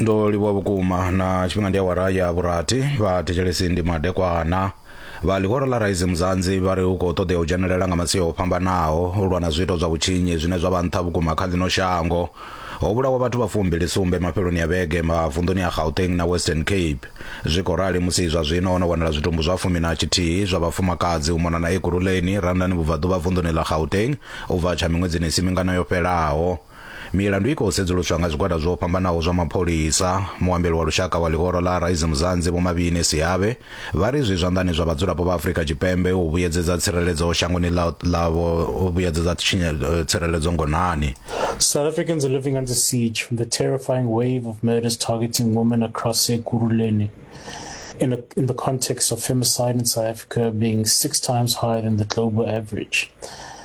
ndo livhuwa vhukuma na tshifhinga ndi awara ya vhurathi vha thetshelesi ndi madekwana vha ḽihoro ḽa raisi muzanzi vha ri hu khou ṱoḓea u dzhenelela nga masia o fhambanaho u lwa na zwiito zwa vhutshinyi zwine zwa vha nṱha vhukuma kha ḽino shango ho vhulawa vhathu vha fumbili sumbe mafheloni ya vhege mavunḓuni a gauteng na western cape zwi khou rali musi zwa zwino ho no wanala zwitumbu zwa fumi na tshithihi zwa vhafumakadzi u mona na ekurhuleni randani vhubvaḓuvha vunḓuni ḽa gauteng u bva tsha miṅwedzini i si mingana yo fhelaho Milandu i khou sedzuluswa nga zwigwada zwo fhambanaho zwa mapholisa. Muambeli wa lushaka wa ḽihoro ḽa Rise Mzansi Vho Mabini Siabe vha ri zwi zwanḓani zwa vhadzulapo vha Afrika Tshipembe u vhuyedzedza tsireledzo shangoni ḽa ḽavho u vhuyedzedza tsireledzo ngonani. South Africans are living under siege from the terrifying wave of murders targeting women across Ekurhuleni in, a, in the context of femicide in South Africa being six times higher than the global average.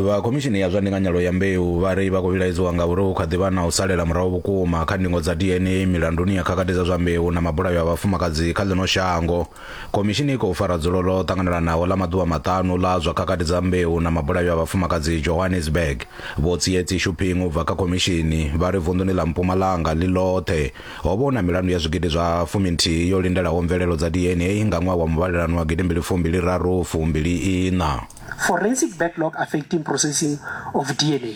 vha khomishini ya zwa ndinganyelo ya mbeu vha ri vha khou vhilaedzwa nga uri hu kha ḓi vha na u salela murahu vhukuma kha ndingo dza dna milanduni ya khakhathi dza zwa mbeu na mabulayo a vhafumakadzi kha ḽino shango khomishini i khou fara dzulo ḽo ṱanganelanaho ḽa maḓuvha maṱanu ḽa zwa khakhathi dza mbeu na mabulayo a vhafumakadzi johannesburg vho tsietsi shuping u bva kha khomishini vha ri vunḓuni ḽa mpumalanga ḽi ḽoṱhe Ho vha hu na milandu ya zwigidi zwa fumi-nthihi yo lindelaho mvelelo dza DNA nga ṅwaha wa muvhalelano wa gidimbili fumbili-raru fumbili-iṋa. Forensic backlog affecting processing of DNA,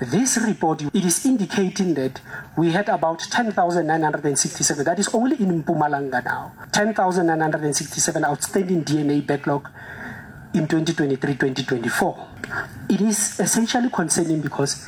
This report it is indicating that we had about 10,967, that is only in Mpumalanga now, 10,967 outstanding DNA backlog in 2023-2024. It is essentially concerning because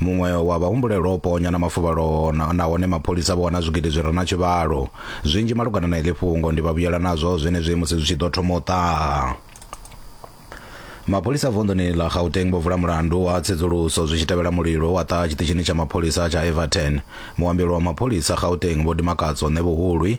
Muṅwe wa vhahumbulelwa o ponya na mafuvhalo nahone mapholisa vho wana zwigidi zwi re na tshivhalo. Zwinzhi malugana na iḽi fhungo ndi vhavhuyela nazwo zwenezwi musi zwi tshi ḓo thoma u ṱaha. Mapholisa vunḓuni ḽa Gauteng vho vula mulandu wa tsedzuluso zwi tshi tevhela mulilo wa ṱaha tshiṱitshini tsha mapholisa tsha Everton. Muambeli wa mapholisa Gauteng Vho Dimakatso Ṋevhuhulwi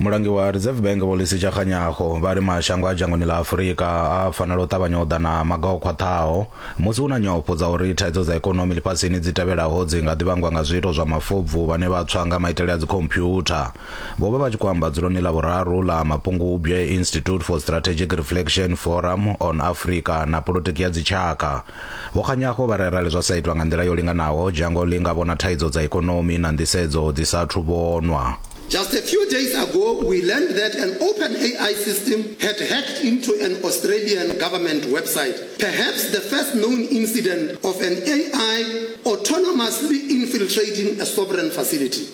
mulangi wa reserve bank vho lisi tshakganyaho vha ri mashango a dzhangoni ḽa afurika a fanela u ṱavhanya u ḓa na maga o khwaṱhaho musi hu na nyofho dza uri thaidzo dza ikonomi ḽifhasini dzi tevhelaho dzi nga ḓi vhangwa nga zwiito zwa mafobvu vhane vha tswa nga maitele a dzikhomphyutha vho vha vha tshi khou amba dzuloni ḽa vhuraru ḽa mapungubwe institute for strategic reflection forum on africa na politiki ya dzitshaka Vho Kganyago vha ri arali zwa sa itwa nga nḓila yo linganaho, dzhango ḽi nga vhona thaidzo dza ikonomi na nḓisedzo dzi sa athu vhonwa. Just a few days ago we learned that an OpenAI system had hacked into an Australian government website, perhaps the first known incident of an AI autonomously infiltrating a sovereign facility.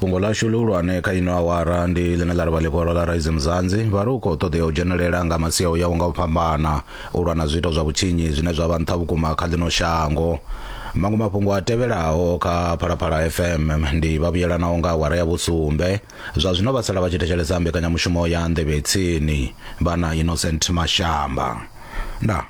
fhungo ḽashu ḽihulwane kha ino awara ndi ḽine ḽa ri vha ḽikwalo ḽa rise mzanzi vha ri u khou ṱoḓea u dzhenelela nga masia u yaho nga u fhambana u lwa na zwiito zwa vhutshinyi zwine zwa vha nṱha vhukuma kha ḽino shango maṅwe mafhungo a tevhelaho kha phalaphala fm ndi vha vhuyelanaho nga awara ya vhusumbe zwa zwino vha sala vha tshi thetshelesa mbekanyamushumo ya nḓevhe tsini vha na innocent mashamba ndaa